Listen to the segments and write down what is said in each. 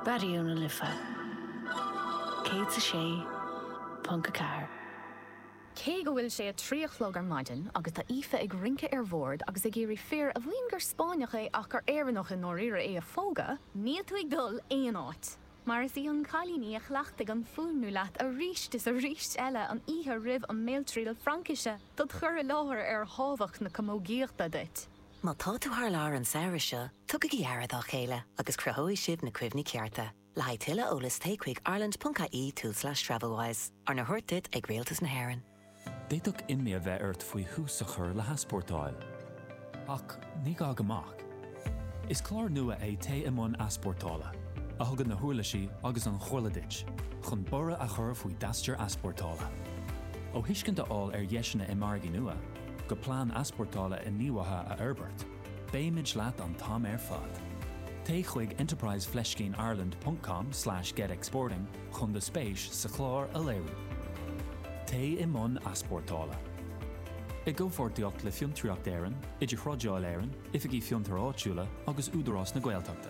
Raidió na Life 106.4. Cé go bhfuil sé a trí a chlog ar maidin agus tá Aoife ag rince ar bhord agus ag iarraidh fir a mhaíonn gur Spáinneach é ach gur Éireannach i ndáiríre é a phógadh, níl tú ag dul aon áit, mar is í an cailín í a chleachtaigh an fuaimniú leat arís is arís eile an oíche roimh an mbéaltriail Fraincise dod' chur i láthair ar thábhacht na camógaíochta duit. Má tá tú thar lear an samhradh seo, tugaigí aire dá chéile agus cruthóidh sibh na cuimhní cearta. Le haghaidh tuilleadh eolais téigh chuig ireland.ie/travelwise, arna thabhairt duit ag Rialtas na hÉireann. D'fhéadfadh imní a bheith ort faoi thús a chur le heaspórtáil. Ach ní gá go mbeadh. Is clár nua é Téigh i mbun easpórtála, a thugann na huirlisí agus an chomhairle duit chun borradh a chur faoi d'aistear easpórtála. Ó thuiscint a fháil ar dheiseanna i margaí nua, go plean easpórtála inghníomhaithe a fhorbairt, beimid leat an t-am ar fad. Téigh chuig enterprise-ireland.com/getexporting chun do spéis sa chlár a léiriú. Téigh i mbun easpórtála. I gcomhpháirtíocht le Fiontraíocht Éireann, Idir-Thrádáil Éireann, Oifigí Fiontar Áitiúla agus Údarás na Gaeltachta.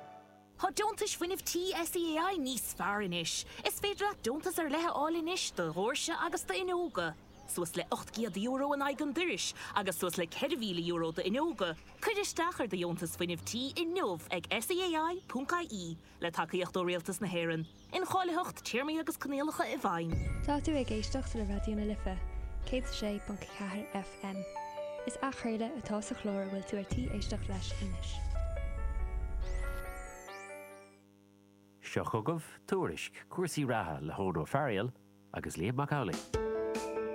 Tá deontais fuinnimh tí SEAI níos fearr anois. Is féidir leat deontas ar leith a fháil anois do dhóirse agus d'fhuinneoga, suas le €800 in aghaidh an dorais agus suas le €4,000 d'fhuinneoga. Cuir isteach ar do dheontas fuinnimh tí inniu ag SEAI.ie, le tacaíocht ó Rialtas na hÉireann. Incháilitheacht, Téarmaí agus Coinníollacha i bhfeidhm. Tá tú ag éisteacht le Raidió na Life, 106.4 FM. Is athchraoladh atá sa chlár a bhfuil tú ar tí éisteacht leis anois. Seo chugaibh Tuairisc cúrsaí reatha le hEoin Ó Fearghail agus Liam Mac Amhlaigh.